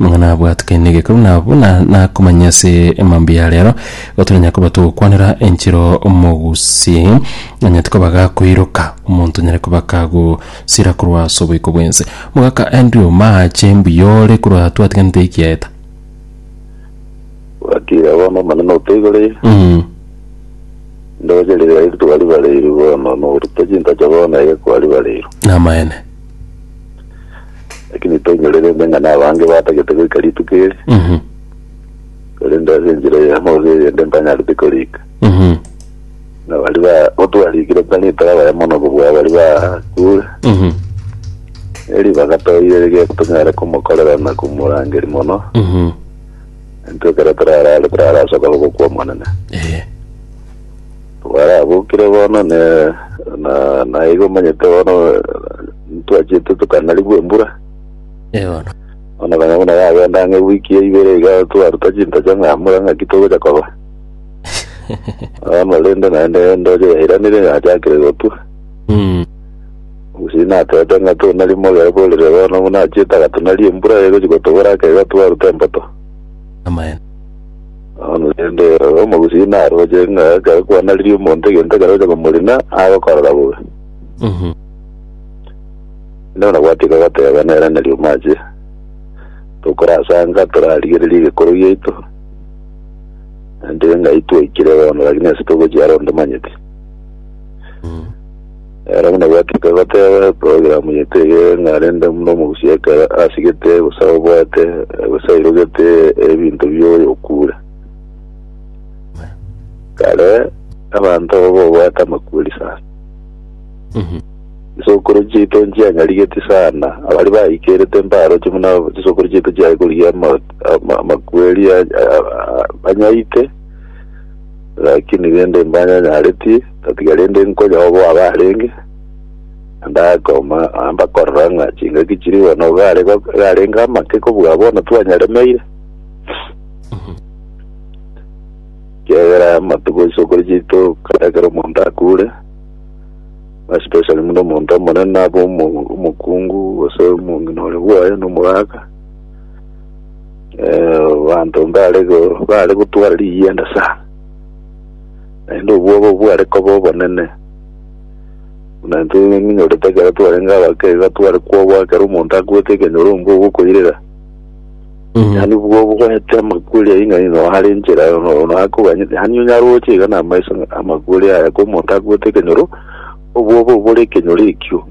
Nigo nabwatikanie egekeu nabo na nakomanya ase emambia ya rero igo toranya koba togokwanera enchero mogusi onye tikoba gakoiroka omonto nyare koba kagosira korwa ase oboiko bwense. Mogaka Andrew mache mbuya ore korwa twatiganete eki yaeta. Wakira bono Omonene otoigorire, Mm. ndoche riria eri twaribareirwe bono, norute chintacho bono ege kwaribareirwe. Namaene. Lakini toinyore rende ng'a nabange batagete goika rituko eri, Mhm. korende ase enchera eyemo gose eyende mpanyarete korika. Mhm. Na baria ba- gotwarikire tari torabaya mono kobua baria bakure, Mhm. eri bagatoire rigeto tonyare komokorera na komorangeria mono, Mhm. intwe ekero torarare torarasoka gokwa Omonene. Eh. Barabokire bono, na, na, na igo omanyete bono ntwachete tokanarigwa embura. Eono. Bono nonya buna yagenda ang'e wiki ya ibere iga twaruta chintocho ng'a mbura ng'aki togocha koba. Bono rende naende endoche yairanire yachakire gotwa. Mm. Gose natete ng'a tonari mogere borire bono buna achiete agatonari embura egochi gotobora aka iga twaruta emboto. Amaene. Korende ere omogusii naroche ng'a ekero kwanaririe omonto egento ekero ocha komorina, agokorora bobe. Mhm. Nao nabwatie kogoteba nere nari omache, tokorasanga torarigererie egekoro giaito, naende ng'ai twaikire bono, lakini ase togochia are onde manyeti. Mhm. Ere buna gwatuka goteba eprogram yetu eye ng'a rende buna omogusi ekero asigete gose obwate gose airogete ebinto bioyo okure. Kare abanto aba bobwate amakweri sana. Chisokoro chiaito nchiang'arigeti sana abari baikerete mbaroche buna chisokoro chiaito chiaye korigia ama- ama- amakweri a- a- a- banyaite lakini rende mbanyanyareti Tatiga rende nkonya obo abarenge, na ndakoma mbakorora ng'a chingaki chiri bono gare go- garenge amake kobua bono twanyaremeire. Kiagera amatuko isoko richiito kare ekero omonto akure, especially buna omonto omonene abe omo- omokungu gose omong'ina ore bwoye na omogaka, eh, abanto mbare go- bare gotwara rigienda sana. Naende obwoba bware koba obonene, buna intwe ng'inyorete ekero twarenge abake iga tware kwoboa ekero omonto akwete ekenyoro ombwe ogokoirera. Yaani bwo bwete amakuri ayi ng'a ino hare enchera ono ono akoganye yaani onyare oche iga na amaiso ng'a amakuri aya ko omonto akwete ekenyoro obwoba obore ekenyoro ekio.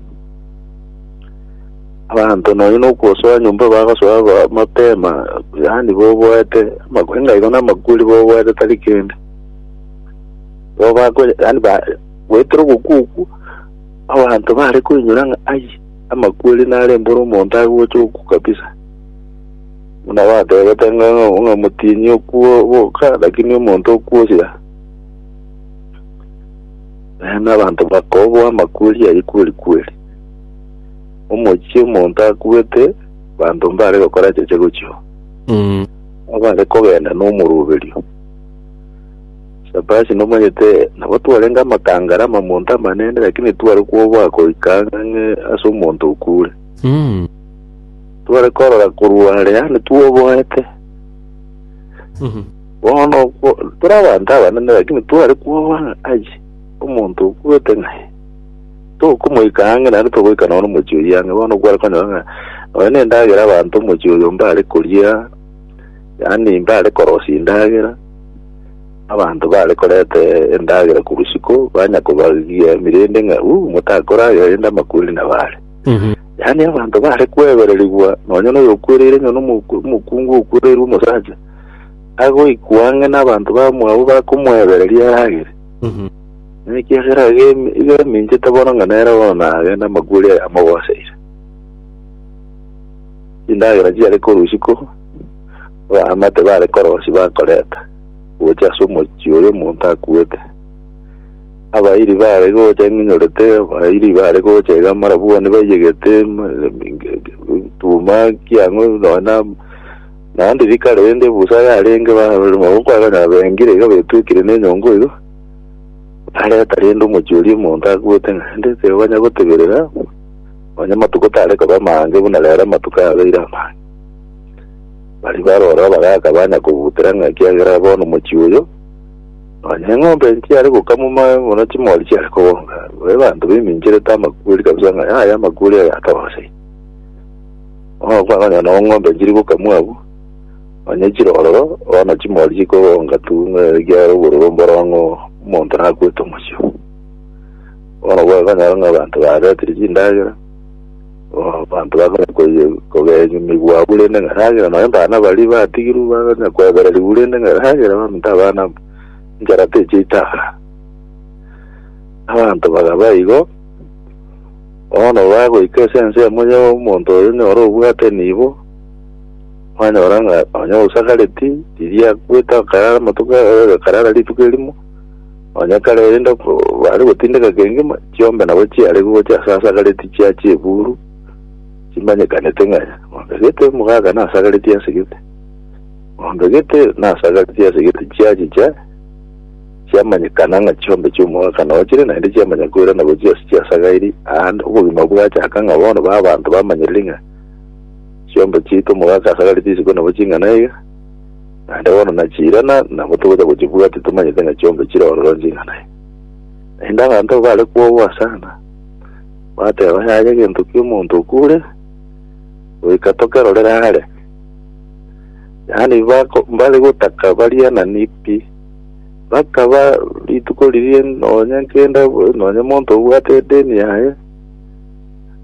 Abanto nonya nokosoa nyomba bagosoa ba- mapema yaani boboete amakuri ng'a igo na amakuri boboete tari kende. Nabo bakonya, yani ba, goetera ogokwa okwo, abanto bare koinyora ng'a ai, amakweri nare mbore omonto agocha okwo kabisa. Buna batebete ng'a ng'a- ng'a omotienyi okwo boka, lakini omonto okwo osira. Naende abanto bakoboa amakweri ayio kweri kweri. Omochie omonto akwete, abanto mbare gokora cheche gochia oo. Mm. Abare kogenda nomoruberio. Shabashi nomanyete nabo twarenge amakangare amamonto amanene lakini tware kwoboa goika ng'ang'e ase omonto okure Mm. tware korora korwa are yane twoboete Mhm. bono kwo- tore abanto abanene lakini tware kwoboa ng'a ai omonto okwete ng'ae tokomoika ang'e naende togoika nono omochie oyo ang'e bono kware konyora ng'a nonya nendagera abanto omochie oyo mbare koria yaani mbare korosia endagera, abanto bare koreta endagera korwa isiko, banya kobariria emirindi ng'a uh, motakoragera rende amakweri nabare. Yaani abanto bare kwebererigwa, nonya noyo okwereire ng'a nomoku- omokungu okwereirwe omosacha, agoikwa ang'e n'abanto bamwabo bakomwebereria aragere. Nekiagera agemi- egeminchete bono ng'a nere bono nagende amakweri aya amogoseire. Endagera chiare korwa isiko, Baamate bare korosia bakoreta gocha ase omochie oyo omonto akuete. Abairi bare gocha ng'inyorete, abairi bare gocha iga amarabwani baiyegete, tuma kiang'o nona naende rikare rende busa yarenge barema gokwagana bengire iga betwekire nenyongo iga bareta rende omochie oria omonto akuete naende tibanya goteberera nonya amatuko tare koba amange buna rero amatuko abeire amange. Baria baroro bagaaka banya kobutera ng'a ekiagera bono mochie oyo, nonya eng'ombe nchiare gokamwa moe buna chimori chiare kobonga. Babe banto baimincherete amakweri kabisa ng'a yaya amakweri aya atoroseire. Bono kwakonyora nabo ng'ombe nchiri gokamwa abwo, nonya chire ororo, bono chimori chikobonga tu ng'a ekiagera obororo mborong'o omonto nakwete omochie oo. Bono kwakonyora ng'a abanto baretire chindagera. Abanto bakanya kogenyunigwa abwo rende ng'eragere, nonya abana baria batigirwe bakanya kwebererigwa rende ng'eragere, baminto abana abo, enchara teche itaara. Abanto bakaba igo, bono bagoika ase ensemo ya omonto oyo nyora obwate nibo, kwanyora ng'a nonya osagareti, riria akwete akarara amatuko, akarara rituko erimo. Onye kare erinde bare gotindeka kengima, chiombe nabo chiare gocha ase asagareti chia chiburu chimanyekanete ng'a ng'ombe gete mogaaka nasagareti ase gete, ng'ombe gete nasagareti ase gete chiachicha chiamanyekana ng'a chiombe chi'omogaaka nao chire naende chiamanya koirana gochia ase chiasagairi aande obogima bwachaka ng'a bono ba abanto bamanyeriri ng'a chiombe chiaito omogaaka asagareti isiko nabo ching'ana iga. Naende bono nachiirana, nabo togocha gochibua, titomanyete ng'a chionsi chire ororo nching'ana aya. Naende abanto abwo baare kwogwa sana, bateeba, Yaya egento ki'omonto okuure, goika tokerorere aare. Yaani bako- mbare gotaka bariananie pi, bakaba rituko riria nonya kenda nonya monto obwate edeni yaye,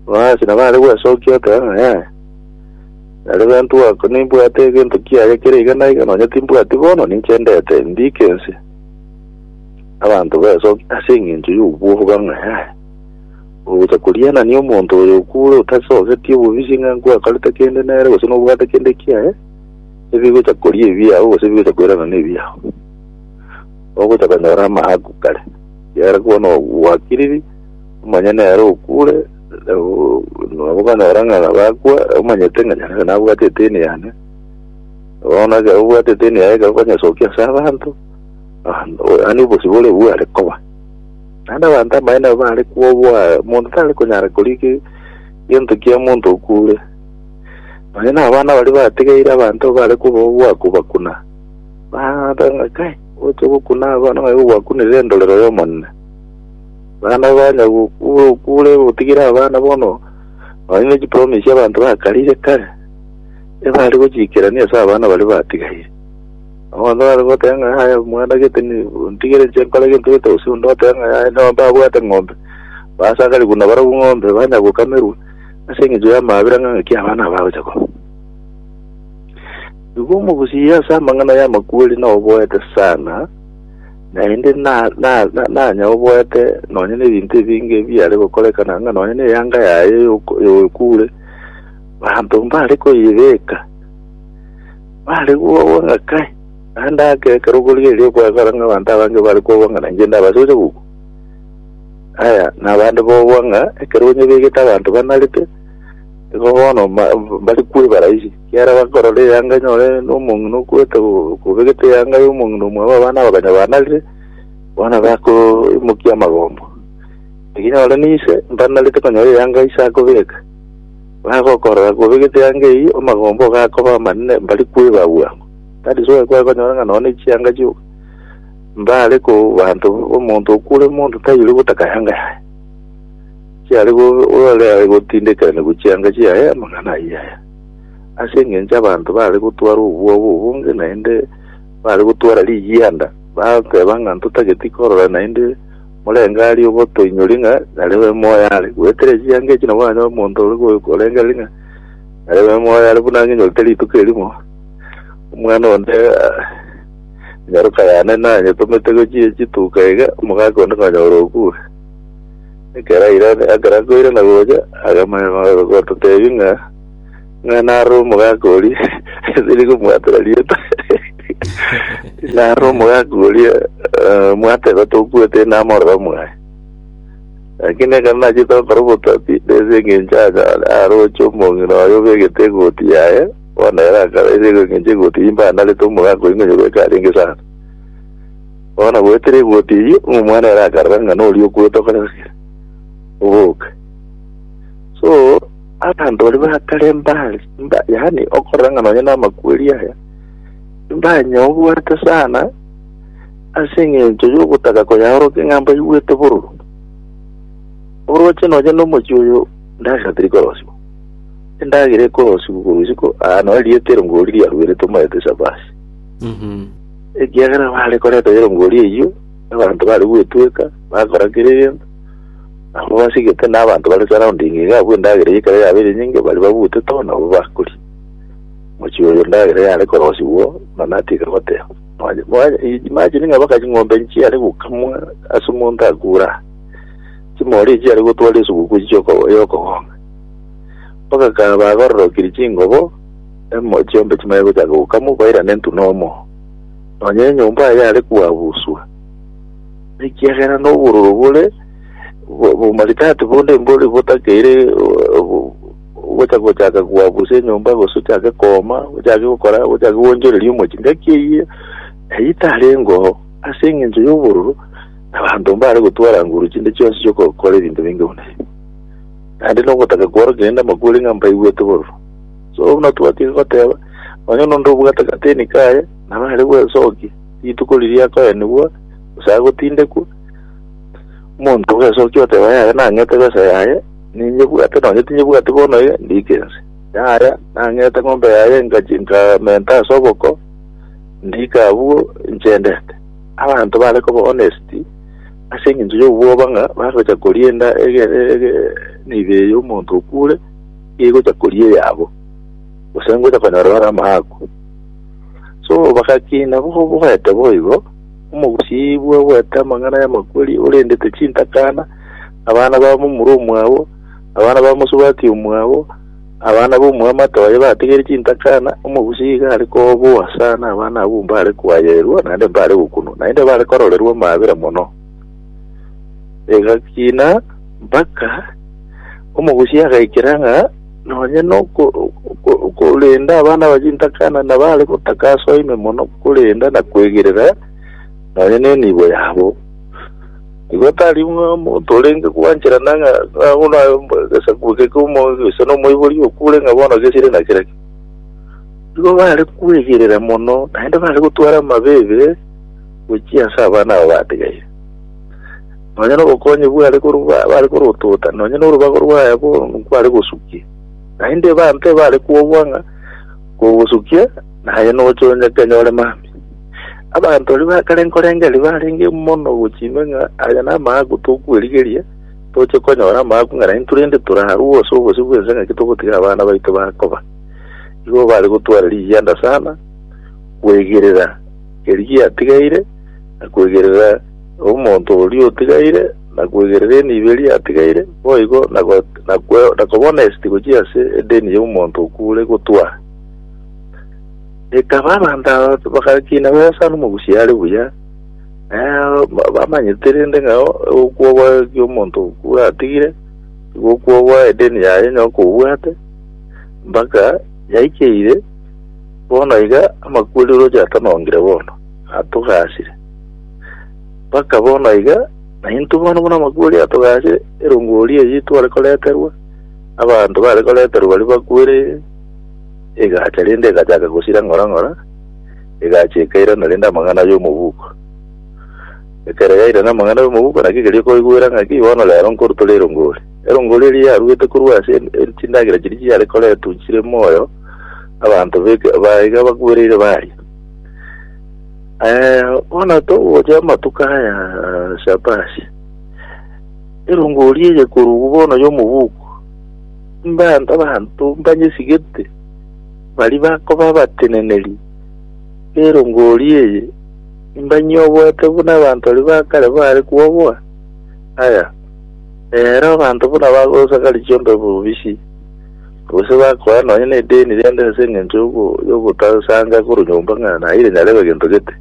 basi nabo are gwesokia oteba ng'a yaya. Nere gento goaka, nimbwate egento kiaye kere iga na iga, nonya timbwati bono, ninche ndete, ndiike ense. Abanto besoke ase engencho y'obwobo bang'ae aye. Ogocha korianania omonto oyo okure otasogeti obobisi ng'a nkwakarete kende nere gose nobwate kende kiaye, ebigocha koria ebiao gose ebigocha koiranana ebiao. Ogocha konyora amaaku kare, kiagera bono gwakiriri, omanye nere okure, nabokonyora ng'a bakwa omanyete ng'a nyasae nabwate eteni yane bono ekero obwate eteni yaye ekero okonyesokia ase abanto ah, yaani obosi bore bware koba naende abanto ambaye nabo bare kwoboa omonto tare konyara koriki gento kia omonto okure naye na abana bari batigeire abanto bare koboboa kobakuna bang'ata ng'a kai oche gokuna abana ng'ai gogwakunire endorero y'omonene Naende okonya gokura okure gotigire abana bono, nonya ne chipromise abanto bakarire kare, ebare gochiikerania ase abana baria batigaire. Abanto bare goteba ng'a yaya omwana gete ni ntigere inche nkore gento gete gose onde otebe ng'a yaya nao mbabwate ng'ombe, basakare buna barobwo ng'ombe banya gokamerwa ase eng'encho y'amabera ng'a ng'aki abana aba bagocha koba. Igo omogusii ase amang'ana y'amakweri naoboete sana. Naende nanyaboete nonya nebinto ebinge ebiare gokorekana ng'a nonya neyanga yaye y'okwekure, banto mbare koyebeka, bare kobua ng'a kae, naende ake ekero okorigereria okoegora ng'a abanto abange bare kobua ng'a nainche ndabase gocha gokwa. Aya nabande bobua ng'a ekero onyebegete abanto banarete, igo bono mbare kwebara ise. Ekiagera bakorora eyanga enyore nomong'ina okwete kobegete eyanga y'omong'ina omwabo abana bakonyabanarire, bono bakoimokia amagombo. Ekinyore ninse mbanarete konyora eyanga ise akobeka. Bagokorora kobegete eyanga eyio amagombo ogakoba amanene mbari kweba bwango. That is why kwakonyora ng'a nonya chianga chioka mbare ko banto omonto okure monto tairi gotaka yanga yaye. Chiare go- ore aye gotindekerania gochia yanga chiaye amang'ana ayio yaya. Ase engencho abanto baare gotwara obwoba obonge naende baare gotwara rigianda, bateba ng'a ntotageti korora naende morenge aria ogotoinyoria ng'a narebe moyo are. Goetera echianga echi nabo okonyora omonto ore korengereria ng'a narebe moyo are buna ng'enyorete rituko erimo, omwana onde nyaroka yane nanyetomete gochia chituko iga, omogaka onde konyora okure. Ekero airane, ekero akoirana gocha, akamanya go- gototebia ng'a ng'a naro omogaka oria esiri komwatera rieta naro omogaka oria eh, mwateba tokwete namorora mwaye lakini ekero nachete gokora obotabi nese eng'encho acha aroche omong'ina oye obegete egoti yaye bono ere akaba ere eng'encho egoti imbe anarete omogaka oria ng'a nyobeka arenge sana Bono goetera egoti eyio, omwana ere akarora ng'a noria okwete okorasera, oboke. So, abanto baria batare mbare, mba, yaani okorora ng'a nonye namakweri aya, mbanye obwate sana ase eng'encho y'ogotaka koyaorokia ng'a mbaigwete bororo. Oroche nonye nomochie oyo endagera teri korosiwa. Endagera ekorosiwa korwa isiko, aa, nonye rieta ero ngori riaruerete omaete esabasi. Ekiagera baare koreta erongoria eyio, abanto bare gwetweka, bakora kera egento. Abwo basigete na abanto bare surrounding iga abwo endagera eyio ekero yaba ere nyinge, baria babutete oo nabwo bakoria. Mochie oyo endagera yare korosigwa, nonya atiga goteba, Mwanya, mwanya, imagine ng'a mpaka ching'ombe nchiare gokamwa ase omonto akure aa. Chimori echi chiare gotwara esuguku echi chi'oko- y'okogong'a. Mpaka kaba agororokirie chingobo, Emo chiombe chimanye gochaka gokamwa bairane ntu nomo, nonya enyomba aye yare kwabuswa, ekiagera nobororo bore bo- bomaridadi bonde mbori botakeire o- o- gocha gochaka kwabusa enyomba gose ochake koma ochake gokora ochake gwonchoreria omochi ngaki eyio eyio tarengoo ase eng'encho y'obororo abanto mbare gotwara nguru chinde chionsi chiokokora ebinto binge buna ebi naende nogotaka kworokia rende amakweri ng'a mbaigwete bororo So buna twatiga goteba, onye nonde obwate agateni kaye, naro are gwesokia rituko riria akoenigwa, gose agotindekwa. Omonto ogesokia oteba, yaya, nang'ete besa yaye, ninyebwate, na onye tinyebwati bono iga, ndiike ense. Yaya, nang'ete ng'ombe yaye, ngachi- nkamenta ase oboko, ndiika abwo, nchendete. Abanto bare koba honest, ase eng'encho y'obwoba ng'a bagocha korienda ege- ege- emibe y'omonto okure, egocha koria eyabo, gose ngocha konyora bare amaaku. So bagakina bo- boete boigo, omogusibwa oboete amang'ana y'amakweri, orendete chintakana, abana ba momura omwabo, abana ba mosubati omwabo, abana b'omwamate oye batigere chintakana, omogusii iga are koboa sana abana abwo mbare kwayeirwa, naende mbare gokunwa, naende bare kororerwa amaabera mono. Egakina mpaka omogusia agaikera ng'a nonye noko- oko- okorenda abana ba chintakana nabare gotaka ase oime mono korenda na kwegerera nonye nenibo yabo. Igo tari ng'a omonto orenge gwancherana ng'a ng'a bono aye mbo- egesaku eke komo- gose na omoibori okure ng'a bono gesire na kera ki. Igo bare kwegerera mono naende bare gotwara amabeebe. gochia ase abana aba batigaire, nonya nobokonyi bware korwa ba- bare korotota, nonya norubago rwaye bono nkware gosukia. Naende ebanto ebare kwobwa ng'a kogosukia, naye noche onye kenyore mambia. Abanto aria bakare nkorengereria barenge mono gochia ime ng'a aya namaaku tokwerigeria, toche konyora amaaku ng'a naintwe rende torarue ase obosio bw'ense ng'aki togotiga abana baito bakoba. Igo bare gotwara rigianda sana, kwegerera Erio giatigaire, na kwegerera omonto oria otigaire, na kwegerera enibo eria yatigaire, boigo na go- na kwe- na kobona esiti gochia ase edeni y'omonto okuure gotwaa. Ekaba abanto aba bagakina besa nomogusi are buya, eh, ba- bamanyete rende ng'a okwobwa kw'omonto okuure atigire, nigo okwobwa edeni yaye onye okobwate, mpaka yaikeire Bono iga amakweri roche atanongire bono, atogasire. Baka bono iga, naintwe bono buna amakweri atogasire, erongori eye tware koreterwa, abanto bare koreterwa baria bakwere egacha rende egachaka gosira ng'ora ng'ora, egacha ekairana rende amang'ana y'omobuko. Ekero yairana amang'ana y'omobuko naki keria okoigwera ng'aki bono rero nkorutore erongori. Erongori eria yarwete korwa ase chindagera chiria chiare koretwa chire moyo, abanto beke- baiga bakwereire baria Eh, bono togocha amatuko aya Shabashi erongori eye korugu bono y'omobuku mbanto abanto mbanyesigete bari bakoba abateneneri erongori eye mbanyoboete buna abanto bari bakare bare kwoboa aya ero abanto buna bagosakari chiombe bobisi Gose bakoa nonya nedeni rende ase engencho yogotasanga korwa nyomba ng'a naire nyarebe gento gete.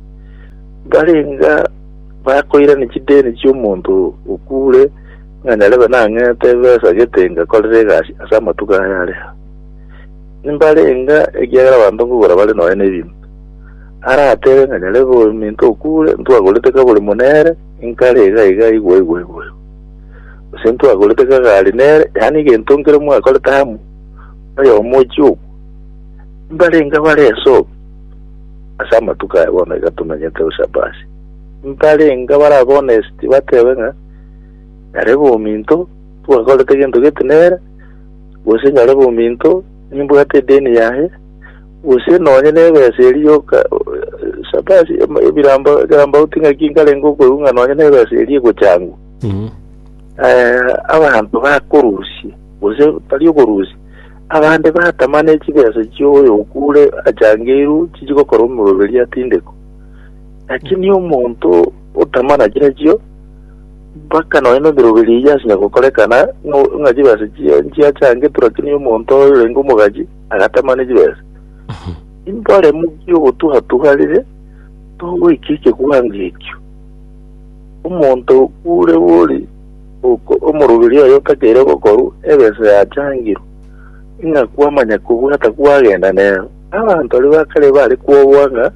Mbarenga bakoirania chideni chi'omonto okuure ng'a nyarebe nang'ete ebesa gete ngakorere egasi ase amatuko aya are aa. Nimbarenga ekiagera abanto nkogora bare nonya nebinto. Aratere ng'a nyarebe ominto okuure ntwagorete kabori monere, inkare iga iga igwo igwo igwo igwo. gose ntwagorete kagare nere, yaani egento nkere mwakorete amo noyomo ochie okwa, mbarenge bare esobi ase amatuko aya bono iga tomenyete gose abasi, mbarenge bare abonest batebe ng'a nyarebe ominto twagorete egento gete nere, gose nyarebe ominto nimbwate edeni yaye, gose nonye na ebesa eri yoka sabasi ebirambo ekerambauti ng'aki nkarenge okoigwa ng'a nonye na ebesa eri egochangwa. Eh, abanto bakorusia, gose tari okorusia, abande batama ne chibesa chioyo okure achangeiru chichi gokora omoroberi atindeko. Lakini omonto otama na chira chio, mpaka nonya na emeroberi eyio asinya gokorekana no- ng'a chibesa chia- chiachangetwe, lakini omonto oyo orenge omogachi agatama ne chibesa. Imboremu giogotuha-tuha rire, togoika ekegwango ekio. Omonto okw'ore bori oko omoroberio oye otakeire gokorwa egeso yachangirwe, ng'a kwamanya kobwata kwagenda nero. Abanto baria ba kare bare kwobua ng'a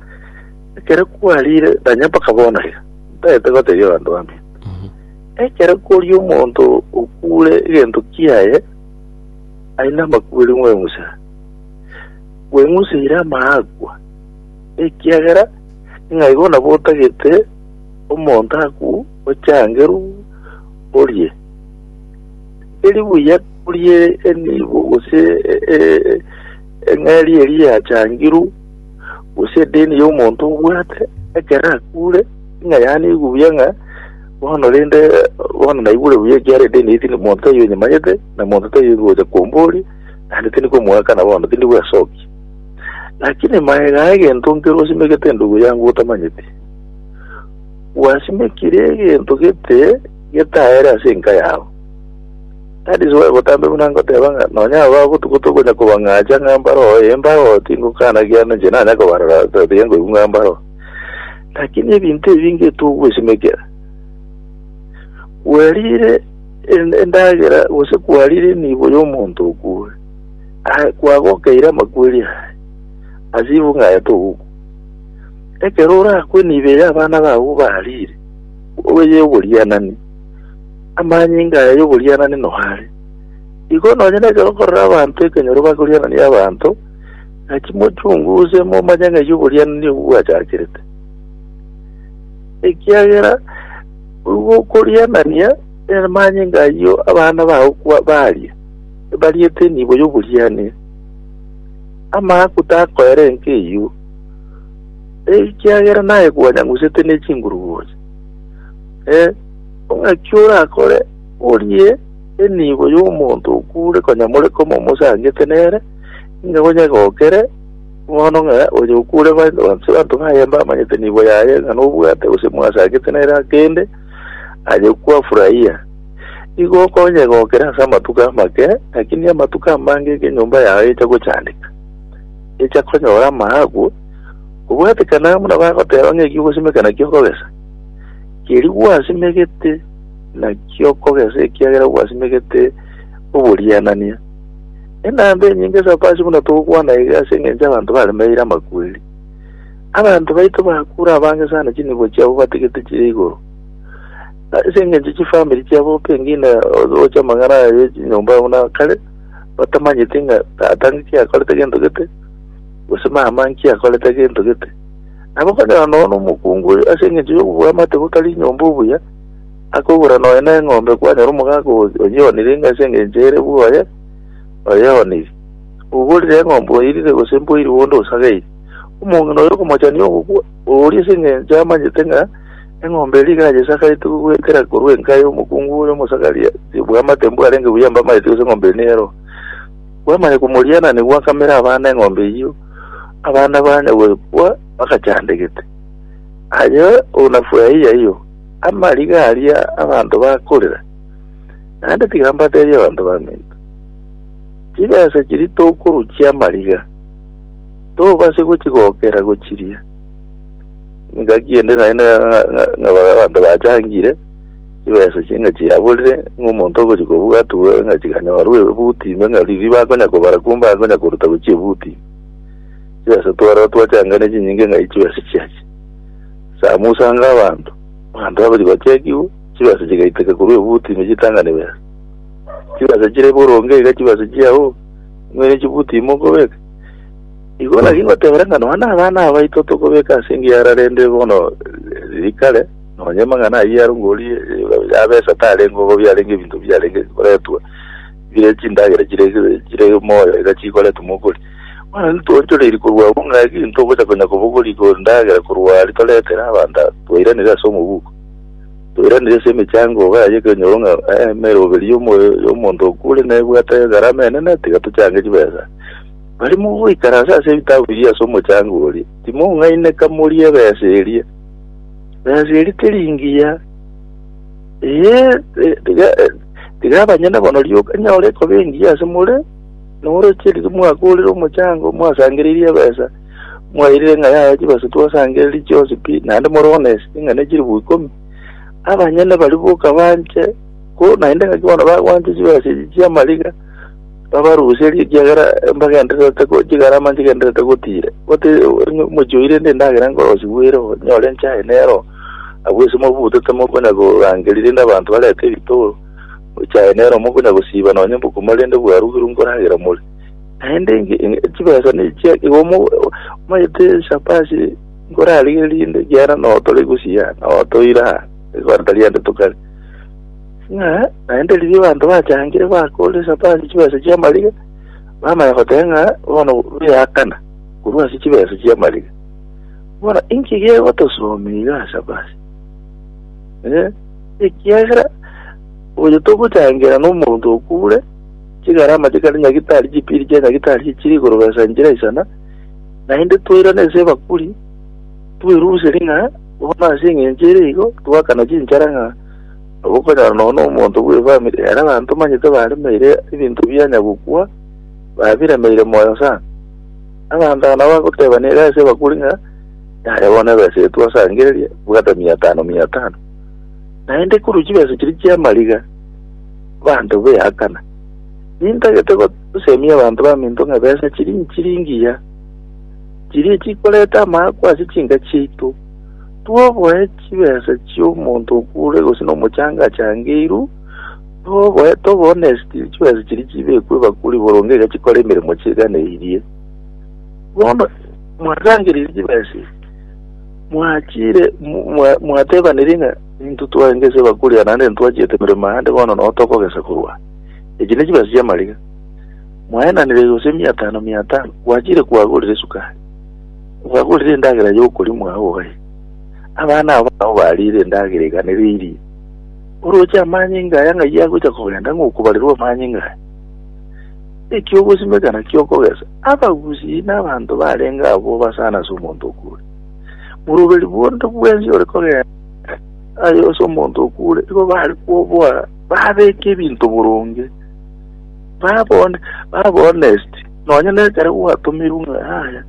ekero kwarire nonye mpaka bono iga, ntaete goteebia abanto bamino. Ekero koria omonto okw'ore egento kiaye, aye namakweri mweng'usere. Bweng'useire amaakwa, ekiagera ng'a igo nabo otagete Omonto agwo ochange ru orie, teri buya orie enibo gose e- e- e- eng'eria eria yachangirwe, gose edeni y'omonto obwate, ekero akure, ng'a yanigwe buya ng'a bono rende bono naigure buya ekiara edeni eye tindi monto taiyo nyimanyete, na monto taiyo ngocha komboria, naende tindi komoakana bono tindi bwesokia. Lakini magega egento nkere osimegete endugu yango otamanyeti, Gwasimekire egento gete getaere ase enka yao. That is why botambe buna ngoteba ng'a nonya aba botuko tokonya kobang'acha ng'a mbaroo eh mbaroo tingokana ekiagera ninche nanya kobarora but tiga ngoigwa ng'a mbaroo. Lakini ebinto ebi ngetogwesimekera. Kwarire en- endagera gose kwarire enibo y'omonto okure. Aye kwagokeire amakweri aye. Ase igo ng'aye togokwa. Ekero orakwe nibe y'abana bao bariire, obeye oborianani, amanyinga aya y'oborianani noare. Igo nonye nekero okorera abanto ekenyoro bakorianania abanto, gaki mochunguze momanye ng'ai oborianani obwo bwachakerete. Ekiagera oigwa okorianania amanyinga ayio abana bao kwa- baria, ebariete enibo y'oborianani, amaakwa takoera enka eyio. ekiagera naye kwanyangusete ne chinguruguocha. Eh, ong'aki orakore orie enibo y'omonto okure konya more komomosangete nere, inga gonyegokere bono ng'a oyo okure ba- banse banto baye mbamanyete nibo yaye ng'a nobwate gose mwasangete nere akende aye kwafurahia igo okonyegokera ase amatuko amake lakini amatuko amange ekenyomba yaye echa gochandeka echa konyora amaagwa, obwatekane amo nabo agoteba ng'a ekio ogosimeka nakio okogesa. Keria gwasimegete nakio okogesa ekiagera gwasimegete oborianania. Enamba enyinge ase abapasi buna togokwana iga ase engencho abanto baremeire amakweri. Abanto baito bakure abange sana chinibo chiabo batigete chire igoro. Ase engencho chifamiri chiabo pengine oche amang'ana aye chinyomba buna kare batamanyeti ng'a tata nki akorete gento gete, gose mama nki akorete gento gete. Nabo okonyora nonya nomokungu oyo ase engencho y'obobwamate botari inyomba obuya, akogora nonya neng'ombe kwanyora omogaka oyo oyeonire ng'a ase engencho ere bwoye oyeoniri. Oborire eng'ombe oirire gose mboiri bonde osageiri. Omong'ina oyo okomochania ogokwa, oria ase engencho amanyete ng'a Eng'ombe eria ekero yachasagaete goetera korwa enka y'omokungu oria omosagaria, tibua amatembo arenge buya amba amaeti gose eng'ombe eria neyaroo. Bwamanya komoriana nigo gwakamera abana eng'ombe eyio, abana banya goebua bagachandegete. Aye onafurahia iyo amariga aria abanto bakorera, naende tiga mbateebie abanto baminto. Chibesa chiria tokoruchia amariga, tobase gochigokera gochiria. Engaki ende naende abanto bachangire chibesa chinga chiaborire ng'a omonto ogochi kobwatigwa ng'a chikanyorwa ebuti ime ng'a riria bakonya kobara kumbe akonya koruta gochia ebuti chibesa twara twachangane chinyinge ng'a chibesa chiachi samusanga abanto abanto abachi bachekigwe chibesa chigaiteka korwa ebuti ime chitang'ani besa chibesa chire boronge iga chibesa chiao ng'a ere chibuti ime okobeka Igoro ake ingotebera ng'a nonya nabana abaito tokobeka ase engiya ara rende bono riri kare, nonya amang'ana ayio ya rungori ya besa tarengeo igo biarenge ebinto biarenge koretwa bire chindagera chire chire moyo iga chikoretwa mobori. Bono intwe toonchoreiri korwa abwo ng'a eki ntogocha konya kobogori igoro ndagera korwa aria toretera abanto aba, twairanire ase omobuko. Twairanire ase emechango iga ya ekenyoro ng'a emeroberi y'omo y'omonto okure nebwate egarama enene tiga tochange chibesa. Barimo goikara ase ase ebitabu biria ase omochango oria, timoung'aineka morie ebesa eria. Ebesa eria teri engiya, ee, tiga tiga abanyene bono rioka nyore ekoba engiya ase more, noroche riria mwagorire omochango, mwasangereirie ebesa, mwairire ng'a yaya chibesa twasangereiri chionsi pi, naende more one eseng'ana ne chilifu ikomi. Abanyene baria boka banche, ko naende ng'aki bono bagwancha chibesa echi chi'amariga. babaruserie, ekiagera mbagendererete chigarama nchigendererete gotire. Gote omochie oire ende endagera nkorosirwe ero, nyore enchaye nero, abwo ase mobutete mokonya korangeria rende abanto barete ebitoro, echaye nero mokonya gosiba nonye mbokuma rende bwarugirwe nkoragera more. Naende chibesa nechia igo mo- omanyete chapa ase nkorarigerie rinde ekiagera noo tore gusii aa, noo toire aa, igo tari ande tokare. Ng'a naende riria abanto bachangire bakoorire Epafrasi chibesa chi'amariga, bamanya goteba ng'a bono bweakana korwa ase chibesa chi'amariga. Bono inki gegotosomia iga ase Epafrasi? Eh, ekiagera oyo togochangereria nomonto okure chigarama chikare nyagitari chipiri chia nyagitari chichire igoro besa enchera isana, naende twairana ase ebakuri, tweruserie ng'a bono ase eng'encho ere igo, twakana chinchara ng'a Nabo okonyora nonya nomonto bw'efamiri ere abanto omanyete baremeire ebinto bianya gokwa, babiremeire moyo sana. Abanto aba nabo bagoteba nere ase abakuri ng'a yare bono ebesa eye twasangereria bwata mia tano mia tano. Naende korwa chibesa chiria chi'amariga abanto beakana. Nintagete gosemia abanto baminto ng'a ebesa chiria nchiringi ya, chiria chikoreta amaakwa ase chinka chiaito. Toboe chibesa chi'omonto okure gose nomochanga achangeirwe, toboe toboo nesitiri chibesa chiria chibekwe ebakuri boronge iga chikore emeremo chi'eganeirie. Bono mwasangereiri chibesa ebi, mwachire mwatebaneiri ng'a intwe twagesa ebakuri aa naende ntwachiete emeremo ande bono noo tokogesa korwa aa. Echi nechibesa chi'amariga mwaenanire gose emiatano miatano, gwachire kwagorire esukari. Obagorire endagera y'okorimwa oye, abana abo nao bariire endagera eganereirie. Orooche amanyinga aya ng'ai agocha kogenda ng'okobarerwa amanyinga aya? Eki ogosimeka nakio okogesa, abagusii na abanto barenge abwo basana ase omonto okure. Boroberi bonde bwensi ore kogenda aye ase omonto okure, igo bare koboa, babeke ebinto boronge, babe hon- babe honest. Nonya nekero gwatomirwe ng'a yaya,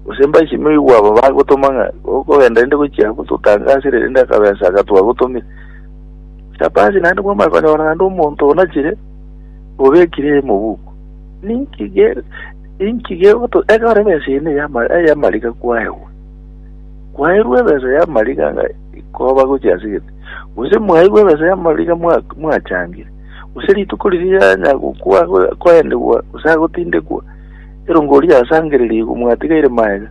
gose mbaichi noigwe aba bagotoma ng'a okogenda rende gochia gototangasire rende akabesa aka twagotomire. Chapasi naende bwamanya konyora naende omonto onachire obekire emobuku. Ninki ge inki gegoto ekero ebesa ene yama yamarika kwaegwa. Kwaerwa ebesa yamarika ng'a ikoba gochia sigete. Gose mwaigwe ebesa yamarika mwa mwachangire. Gose rituko riria yanya gokwa ago- akoendegwa gose agotindekwa, erongo oria asangererie igwa mwatigaire maega,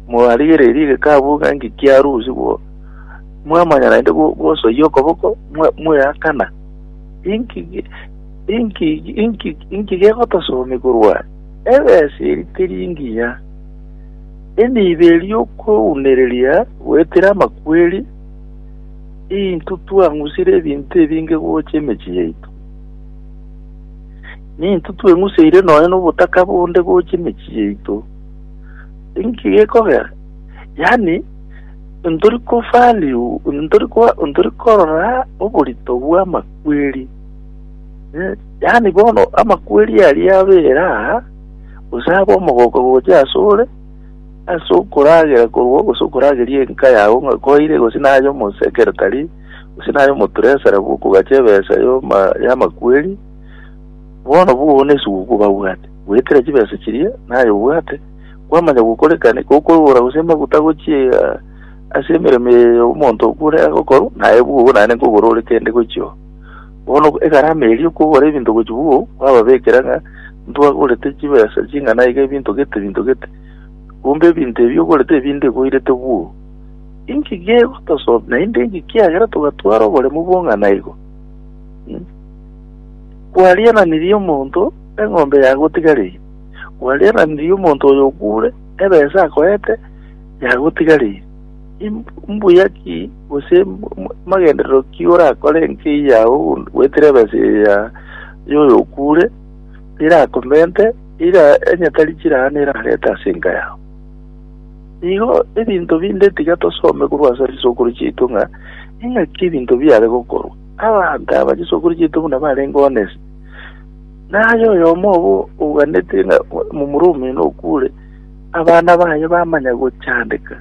mwarigererie egekabu ng'a inki kiarusia bo, mwamanya naende go- gosoyia okoboko, mwa- mwaeakana. Inki ge- inki inki inki gegotosomia korwa aya? Ebesa eri teri engiya, emiibe eri y'okweunereria goetera amakweri, Intwe twang'usire ebinto ebinge gocha emechie yaito, nintwe tweng'useire nonya nobotaka bonde gocha emechie yaito. Inki gekogera? Yaani, ntori kovalue, ntori ko, ntori korora oborito bw'amakweri. Eh, Yaani bono amakweri aria abeera aa, gose abe omogoka gocha ase ore, Ase okoragera korwa gose okorageria enka yao ng'a koire gose naye omosekeretari gose naye omotresara bw'okogacha ebesa y'oma y'amakweri, bono bono ase gokwa obabwate, bwekera chibesa chiria naye obwate, kwamanya gokorekane gokorora gose amaguta gochia ase emeremo eye omonto okure agokorwa, naye bogo naende nkogorore kende gochia oo. Bono egarama eria y'okogora ebinto gochia bwoo kwababekera ng'a ntwagorete chibesa ching'ana iga ebinto gete ebinto gete, kombe ebinto ebi ogorete ebi ndigoirete bwoo. Inki gegotosom naende inki kiagera togatwara oboremu bong'ana igo? Mm. Kwariananirie omonto eng'ombe yagotigareire, kwariananirie omonto oyo okure ebesa akoete yagotigareire. Mbuya ki gose magenderero ki orakore enkei yao goetera ebesa eya y'oyokuure terakomente, eira enyatari chiraane erarete ase enka yao. Igo ebinto binde tiga tosome korwa ase chisokoro chiaito ng'a ing'aki ebinto biare gokorwa. Abanto aba chisokoro chiaito buna barenge honest, naye oyomo obo ouganete ng'a momura omino okuure, abana baye bamanya gochandeka,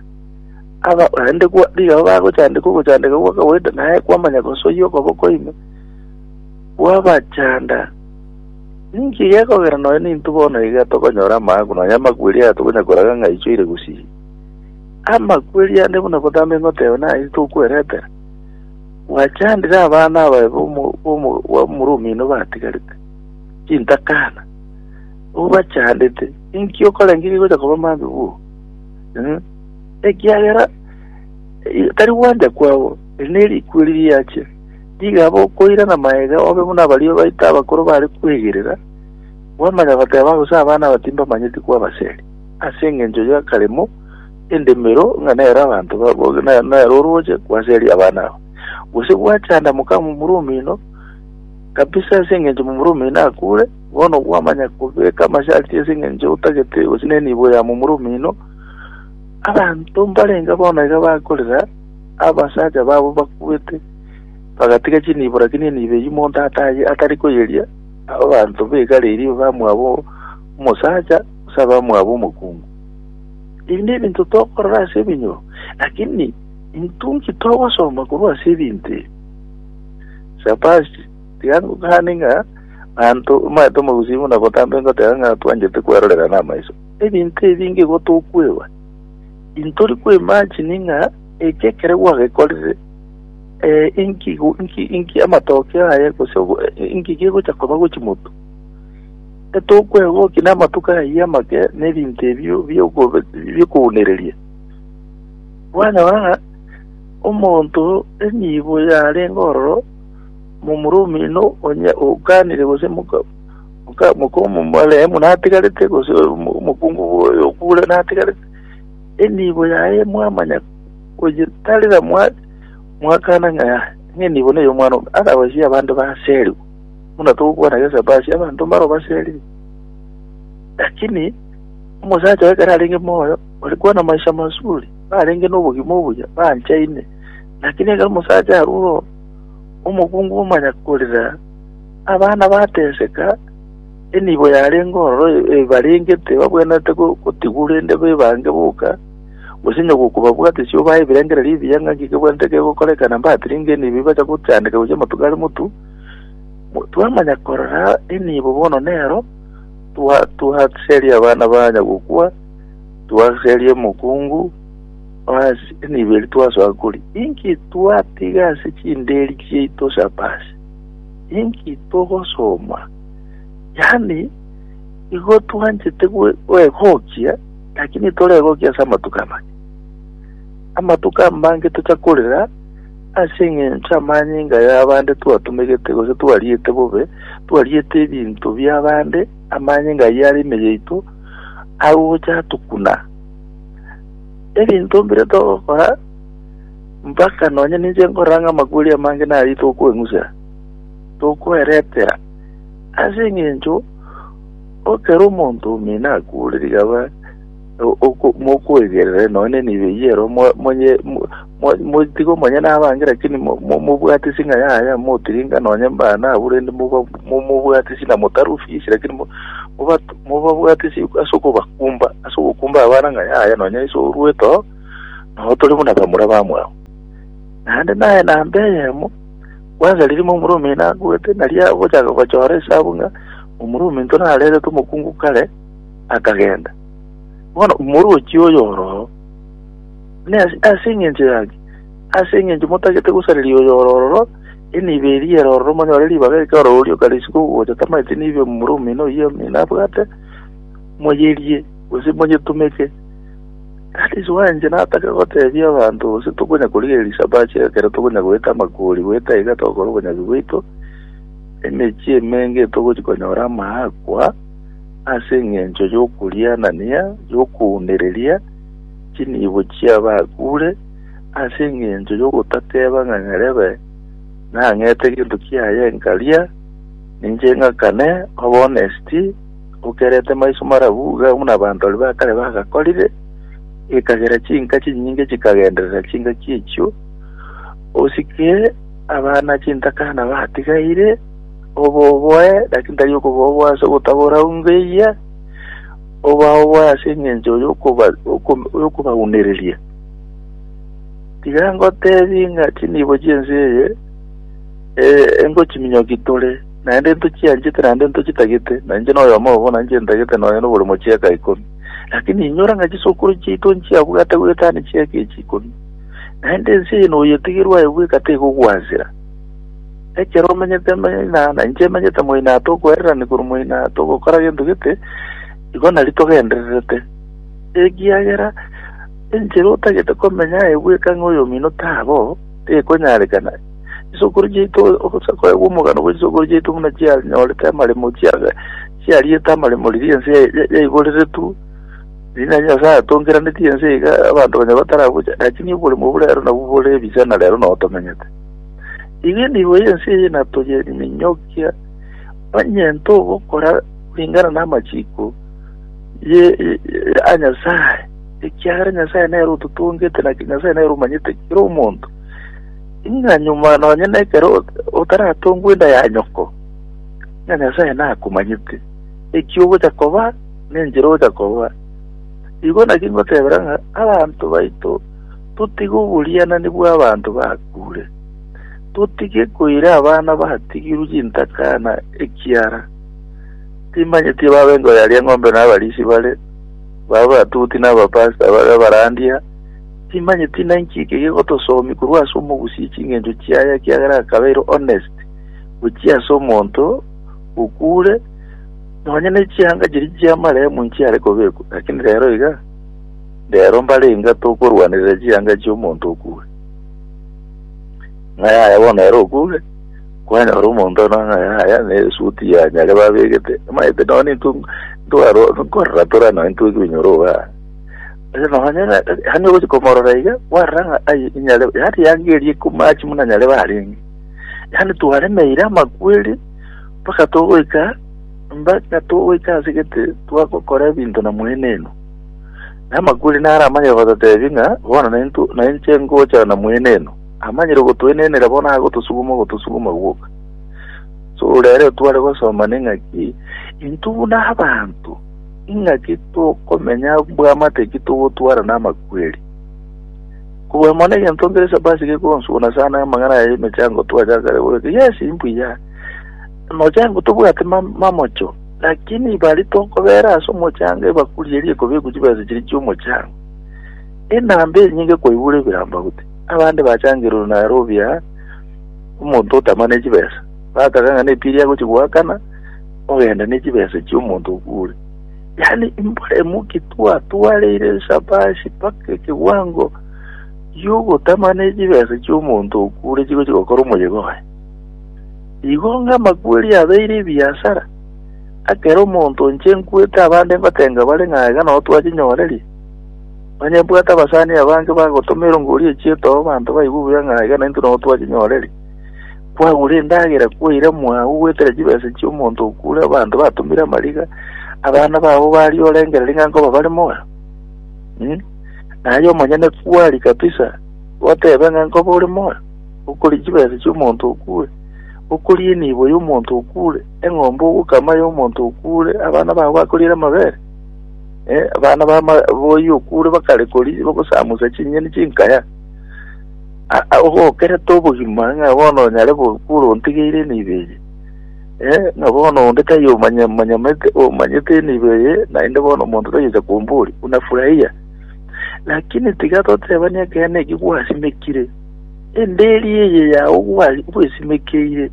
aba naende kwa rigao bagochandeka ogochandeka gwa kawaida, naye kwamanya gosoyia okoboko ime, kwabachanda. Ninki gekogera nonya ninto bono iga tokonyora amaaku, nonya amakweri aya tokonya koraga ng'a aichoire gusii? Amakweri ande buna gotama ing'oteba naye titokweretera. Gwachandire abana abaye bomo- bomo- bw'omoromino batigarete, chintakana. obachandete, inki okorengeria gocha koba mambia bwoo? Eh, ekiagera eh, tari gwanja kwabo, eri nerikweri riache, rigaba okoirana maega obe buna abaria baito abakoro bare kwegerera, bwamanya goteba gose abana abatimba manyeti kwabaseri, ase engencho y'akaremo, endemero, ng'a nero abanto ba- bo- ne- nero oroche kwaseri abana aba. Gose gwachanda mokamomura omino, kabisa ase engencho momura omino akure, Bono gwamanya kobeka amasharti ase engencho otagete gose nenibo ya momura omino, abanto mbarenga bono iga bakorera abasacha babo bakubete, bagatiga chinibo lakini enibo eyio monto ataye atari koyeria abanto begare eria abamwabo omosacha gose abamwabo omokungu. Ebi nebinto tokorora ase ebinyoro, lakini intwe inki togosoma korwa ase ebinto ebi? Shabashi. Tiga ngokane ng'a naanto omaete omogusii buna botambe ngoteba ng'a twanchete kwerorera namaiso ebinto ebinge igo tokwegwa. Intori koimagine ng'a eki ekero gwagekorire eh, inki go- inki inki amatokeo aye gose obo- eh, inki gegocha koba gochimotu. Etokwegwa oki namatuko ayio amake na ebinto ebio biokobe- biokounereria. Kwanyora ng'a omonto enibo yarenge ororo Momura omino onye ogaanire gose moka omoremu natigarete gose omokungu bw'oyokuure natigarete, enibo yaye mwamanya koyetarera mwakana ng'a enibo ney'omwana one, otherwise y'abande baserigwe. Buna togokwana gese baasi abanto mbaro baserire. Lakini omosacha oye ekero arenge moyo ore kwana maisha mazuri, narenge nobogima obuya, banchaine. Lakini ekero omosacha arure oo. Omokungu omanya korira, abana bateseka, enibo yarenge ororo ebarengete babwenerete gotigwa rende bebange boka, gose onye gokobabwate isiko bae ebirengererio ebiya ng'a inki kebwenerete kegokoreka na mbatire inga enibo ebacha gochandeka gochia amatuko are motu, twamanya korora enibo bono nero twa twaseria abana banya gokwa, twaseria omokungu, Ase enibo eri twasoa kori, inki twatiga ase chinderi chiaito ch'abaasi? Inki togosoma? Yaani, igo twanchete gwe- gwegokia, lakini toregokia ase amatuko amake. Amatuko amange tocha korera ase eng'encho amanyinga y'abande twatumegete gose twariete bobe, twariete ebinto bi'abande, amanyinga ayio are ime yaito, agocha atukuna. Ebinto mbire togokora, mpaka nonya ninche nkorora ng'a amakweri amange naria tokweng'usera, tokweretera, ase engencho okere omonto omino akuure rigaba, mokwegerere nonya nenibo eyio ero Motiga omonyene abange, lakini momobwatisi ng'a yaya, motiringa nonye mbana abwo, rende momobwatisi na motarwa fisi, lakini mobabwatisi ase okobakumba, ase ogokumba abana ng'a yaya nonye iso orwete oo, nao tore buna bamura bamwabo. Naende naye namba eyemo, kwansa riria omura omino akwete, nari agochaka gochora esabu ng'a omura ominto narerete omokungu kare, akagenda. Bono omorochi oyo oroo. Ne ase engencho yake, ase engencho motagete gosareria oyo ore ororo, enibo eria ere ororo monyore ribaga eke ore oria okariswa kogogocha tamaete nibo omomura omino oyio omino abwate, moyerie, gose monyetumeke. That is why inche nataka gotebia abanto gose tokonya korigereria risabachi ekero tokonya goeta amakori goeta iga togokora obonyabi bwaito, emechie emenge etogochi konyora amaakwa ase engencho yokorianania, yokounereria, Chinibo chi'abakure ase engencho y'ogotateba ng'a nyarebe nang'ete gento kiaye nkaria, ninche ng'akane, obe honesty, okerete maiso marabu iga buna abantori ba kare bagakorire, ekagera chinka chinyinge chikagenderera chingaki echio, osike abana chintakana batigaire, oboboe, lakini tari okoboboa ase ogotabora ungo eyia, obaoboe ase engencho y'okobaunereria. Tiga ngoteebie ng'a chinibo chi'ense eye engochiminyoki tore, naende ntochianchete naende ntochitagete, na inche noyomo obo nainche ntagete nonya noboremo chi'eka ikomi. Lakini inyora ng'a chisokoro chiaito nchiabwate goetania chi'eka echi ikomi, naende ense eye noyetegerwe aye bweka tegogwansera. Ekero omenyete moina, na inche emenyete moina, tokwererani korwa moina, togokora gento gete, igo nari togendererete. Ekiagera enchera otagete komenya aye bweka ng'a oyomino tabo, tekonyarekana. Chisokoro chiaito ogosa koegwa omogano bwe chisokoro chiaito buna chianyorete amaremo chia chiariete amaremo riria ense ya- ya- yaiboreretwe riria na Nyasae atongeranetie ense iga abanto banya bataragocha, lakini oboremo obo rero nabwo bore ebicha na rero nabo tomenyete. Iga enibo y'ense eye natoyeri minyokia, onye ntogokora ringana n'amachiko ye a Nyasae, ekiagera Nyasae nere ototongete, naki Nyasae nere omanyete kera omonto. Ing'a nyuma nonye nekero otaratongwa enda ya nyoko, ng'a Nyasae nakomanyete, eki ogocha koba, nenchera ogocha koba. Igo naki ngotebera ng'a abanto baito totige oborianani bw'abanto bakure, totige koira abana batigirwe chintakana ekiara timanyeti ebabe nkoyaria eng'ombe na abarisi bare, babe abatuti na abapasta babe abarandia, timanyeti na inki eke gegotosomi korwa ase omogusii ching'encho chiaye ekiagera akabeire honest gochia ase omonto okure, nonya ne chianga chiria chi'amarehemu nchiare kobekwa, lakini rero iga Rero mbare inga tokorwanerera chianga chi'omonto okure. Ng'a yaya bono ere okure, kwanyora omonto ono ng'a yaya na esuti ya nyare babegete, maete nonya nintu ntwaro nkorora tora nonya ntwe kibinyoro oba. Ase nonya ng'a hani ogochi komorora iga, kwarora ng'a ai nyare yari yagerie komachi muna nyare barenge. Yaani twaremeire amakweri mpaka togoika Mbaka togoika ase gete twagokora ebinto na mweneno. Na amakweri naro amanyire gototeebia ng'a bono naintwe nainche ngochana na mweneno. Amanyire gotoenenera bono agotosuguma ogotosuguma gwoka. So rero tware gosoma neng'aki intwe buna abanto ing'aki tokomenya bwamate ki togotwara na amakweri. Kobua mono egento nkere sabasi gekonsuna sana amang'ana ya emechango twachakare goreka yes imbuya Omochango tobwate mamocho, lakini ibare tonkobera ase omochango ebakuri eria ekobekwa chibesa chiria chi'omochango, enamba enyinge kwaigure ebirango gute. Abande bachangerwe naro obuya omonto otamane chibesa, bataka ng'a nepirie agochia goakana ogenda ne chibesa chi'omonto okure. Yaani mbore emokia twatwareire esabashi mpaka ekewango gi'ogotamana chibesa chi'omonto okure chigochia gokora omoyega oye. Igo ng'amakweri abeire ebiasara, ekero omonto o inche nkwete abande ngotenga bare ng'a iga nao twachinyorerie, onye mbwate abasani abange bagotoma erongo ria echieta oo abanto baigwe buya ng'a iga naintwe nao twachinyorerie. Kwagura endagera kwaira mwago goetera chibesa chi'omonto okure abanto batomire amariga, abana babo baria orengereria ng'a nkoba bare moyo? Naye omonyene kwari kabisa, gotebe ng'a nkoba ore moyo? Okoria chibese chi'omonto okure, okoria enibo y'omonto okure, eng'ombe ogokama y'omonto okure, abana bao bakoriere amabere, eh, abana ba ma- boyio okure bakare koria bagosamusa chinyeni chinkaya. A- a- ogokerete obogima ng'a bono onyare gokura ontigeire enibo eye, eh, ng'a bono onde taiyo omanya omanyamete omanyete enibo eye, naende bono omonto tayocha komboria, unafurahia? Lakini tiga totebani ekeene eki gwasimekire. Enderi eye yao bwari bwesimekeire,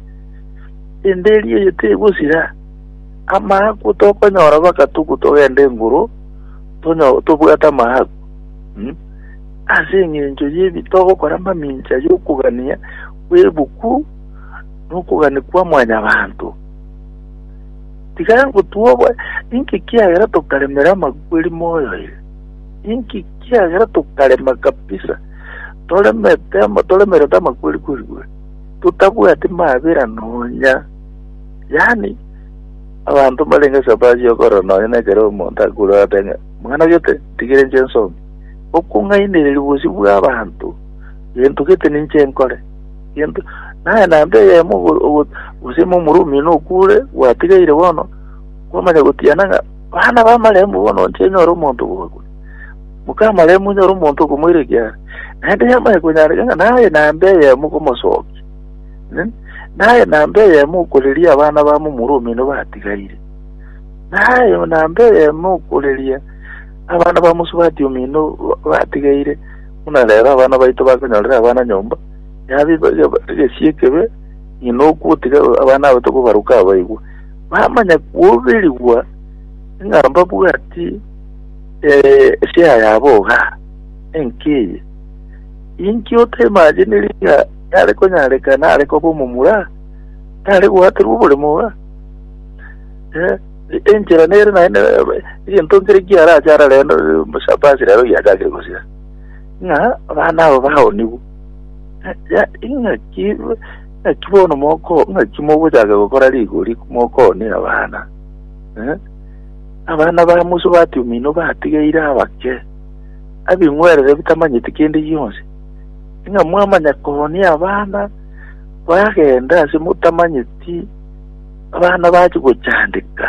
enderi eye tegosira, amaakwa tokonyora baka tuko togenda enguru tobwate amaakwa hmm? ase engencho yebi togokora mamincha yokogania kw'ebuku nokogania kwa mwanyabanto. Tiga ngotuoba, inki kiagera tokaremera amakweri moyo ere? Inki kiagera tokarema kabisa? toremete toremerete amakweri-kweri bwe, totabwati mabera nonya. Yaani, abanto mbarenge sabaasi y'okorora nonya nekero omonto akorora ate ng'a, mwana oyo te, ntigire inche nsome. Okong'ainereria bosio bw'abanto, gento gete ninche nkore. Gento, naye naende eyemo ogo- ogo- gose ime omorwa omino okure, gwatigeire bono, kwamanya gotiana ng'a, bana b'amarembo bono inche nyore omonto bw'ogokora. Mokamare monyore omonto okomoirakia are, naende yamanya konyareka ng'a naye naende eyemo okomosokia, eh, naye naende eyemo okoreria abana bamo omoro omino batigaire, naye naende eyemo okoreria abana ba mosubati omino ba- batigaire, buna rero abana baito bakonyorera abana nyomba, yabe ba- ba- egesie ekebe, ng'ina ogotiga abana abo tokobaruka abaigwa. Bamanya koberigwa ng'a mbabwati Esia ya boga enki eye? Inki otaimajiniri ng'a yare konyareka nare koba omomura? Nare gwaterwa oboremo iga? Eh, enchera nere naende egento nkere kiarache arare Shabasi rero giachakire gosira ng'a abana abo baonigwe ing'aki ing'aki bono moko ing'aki mogochaka gokora rigori mokonia abana eh? Abana ba Musa batia omino batigeire abake, abing'werere bitamanyeti kende gionsi, ng'a mwamanya koonia abana bagende ase motamanyeti abana bachia gochandeka.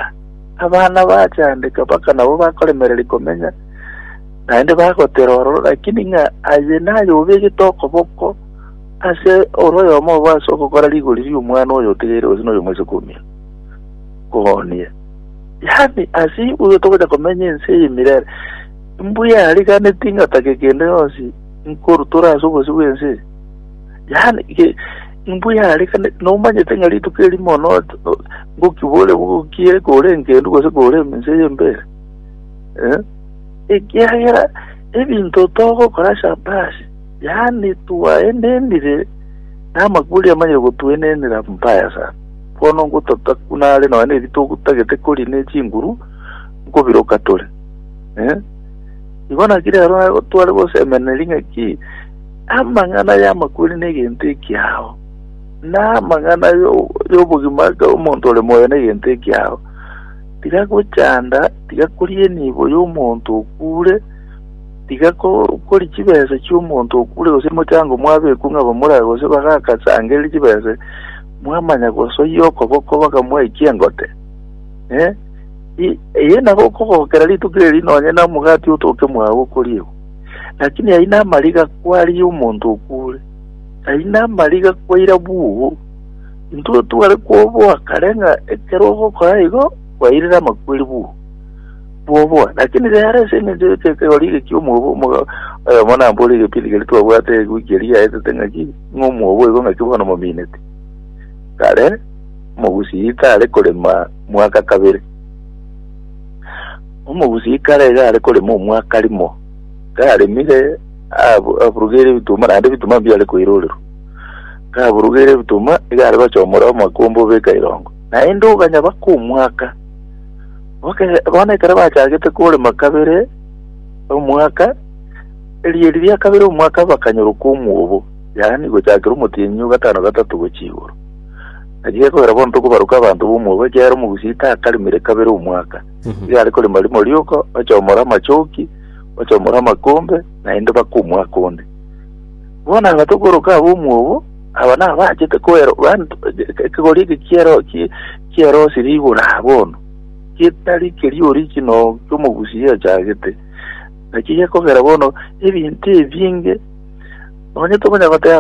Abana bachandeka mpaka nabo bakoremereria komenya, naende bagotera ororo, lakini ng'a aye naye obegete okoboko ase ore oyomo obo ase ogokora rigori ri'omwana oyo otigeire gose noyo omosike omino, koonia. Yaani, ase igoro togocha komenya ense eye emirere. Mbuya ariganeti ngatake kende yonsi nkorutora ase obosio bw'ense eye. Yaani, ge- mbuya ariganeti, nomanyete ng'a rituko eri mono o- ngokibore bogokie kore engendu gose kore ense eye mbere. Eh? Ekiagera ebinto togokora shabasi, yaani twaenenire namakuri amanyire gotuenenera mbaya sana. Bono ngototaka buna are nonya neritogu tagete kori ne chinguru, nkobiroka tore. Eh? Igo naki rero nabo tware gosemeneria ng'aki amang'ana y'amakweri n'egento ekiao, na amang'ana yo- y'obogima aka omonto ore moyo n'egento ekiao. Tiga gochanda, tiga koria enibo y'omonto okure, tiga ko- kori chibesa chi'omonto okure gose mochango mwabekwa ng'a bamorage gose bagakasangererie chibesa Mwamanya gosoyia okoboko bakamwaikia engote? Eh, i- eye nabo okogokera rituko eri nonye na omogati otoke mwao okoriegwa. Lakini aye namariga kwaria omonto okuure, aye namariga kwaira bugo. Intwe tware kwoboa kare ng'a ekero ogokora igo kwairire amakweri bugo. Bwoboa, lakini rero ase eng'encho y'ekegori ege ki'omogoba omoga oyomo nambore egepindi keria twabwate egwiki eria yaetete ng'a ki ng'a omwobo oigo ng'aki bono mominete. Kare omogusii tare korema mwaka kabere. Omogusii kare iga are korema omwaka rimo. Karemire ab- aburugeire ebituma naende ebituma mbiare koirorerwa. Kaburugeire ebituma iga are gochomora omokumba obeka irongo. Naende oganya baka omwaka. Boke- Bono ekero bachagete korema kabere omwaka Erio riria kabere omwaka bakanyorokwa omwobo, yaani gochakera omotienyi o gatano gatato gochia igoro. Naki gekogera bono tokobaroka abanto b'omwobo, ekiagera omogusi takarimire kabere omwaka, iga are korima rimo rioka, ochomora amachoki, ochomora amakombe, naende baka omwaka onde. Bono aba tokoroka ab'omwobo, aba nabachete koero, yaani to- ekegori eke kiero- ki- kierosi rigoro aa bono, getari keria origino ki'omogusi giachagete. Naki gekogera bono ebinto ebinge nonye tokonyara goteba,